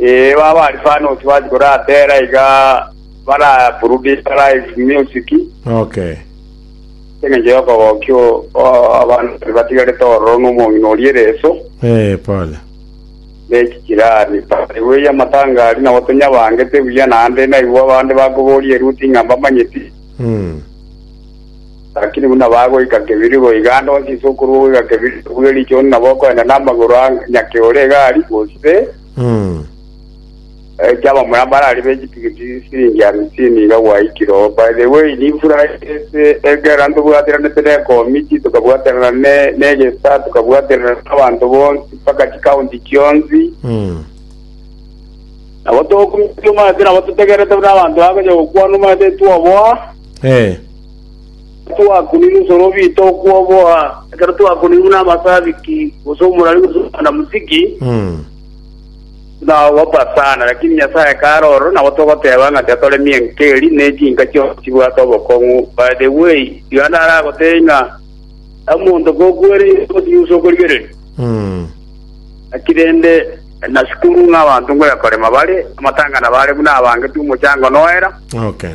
Ee, baba Alfanos bati koratera iga baraproduce live music Okay. eng'encho y'okogokio abanto batigarete ororo n'omong'ina oria ereso Eh, pole. nechichirani bweya amatanga aria nabo tonyabangete buya naende naigwa abande bakoboria eruti ng'a mbamanyeti Mm. Lakini buna bagoika kebiri goiga nonsi ase okorua goiga kebiri bwe richoni nabo okoenda namagoro a nyake ore egari, gose baeche abamura mbare aria be chipigiti chisiringi amisini iga gwaikire oo. By the way, nimfura ase ekero ntobwatiranete ne ekomiti, tokabwaterana ne negesa, tokabwaterana nabanto bonsi mpaka chikaunti chionsi. Nabo tokumia omanyete nabo totegerete buna abanto bakonya gokwana omanyete twoboa. Twakunigwe ebisorobio bito okwoboa, ekero twakunigwe namasabiki, gose omorari, gose omwanamuziki, buna ogopa sana. Lakini Nyasae kare ororo nabo togoteba ng'a tiatoremie enka eri, ne chinka chionsi chibwate obokong'u. By the way, tiga nare agotebie ng'a omonto kokwereire gose yusa okorigereria, naki rende nasukuru ng'a abanto ngoya korema bare, amatangana bare buna abangeti omochango noera. Okay.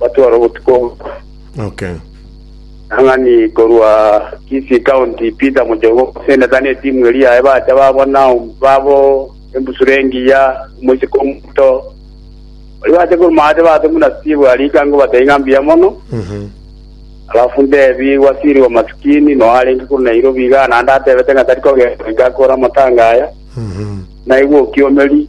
batwara obotuko obuya. Okay. Ang'ani korwa Kisii County, Peter Mujogo, seneta na etimu eria yaye bacha babona babo embusuro engiya, omoiseke omoto. Baria bacha korwa maate baase buna Steve arika ngobatebia ng'a mbuya mono. Mhm. Alafu ndebi wasiri wa masikini no arenge korwa Nairobi iga naende atebete ng'a tari kogenda goika akore amatanga aya. Mhm. Naigwe okiomeri.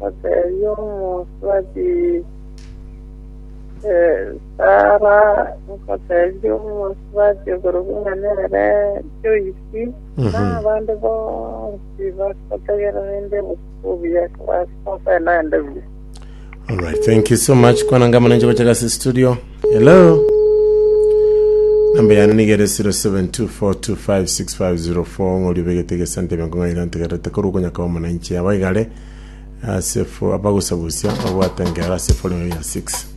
Bateebia omosubati, Sara ngoteebie omosubati okorokwa ng'a nere Joisi, na abande bonsi bagotegera rende obotuko obuya kobasa gokora naende buya. Alright, thank you so much kwana ngamana nje gocha gasi studio. Hello. Namba yane nigere 0724256504 ng'ori obegete gesante benko ng'aira ntegerete koru okonyaka omonanche abaigare ase fo abagosagusia babwate engero ase Forimia 6.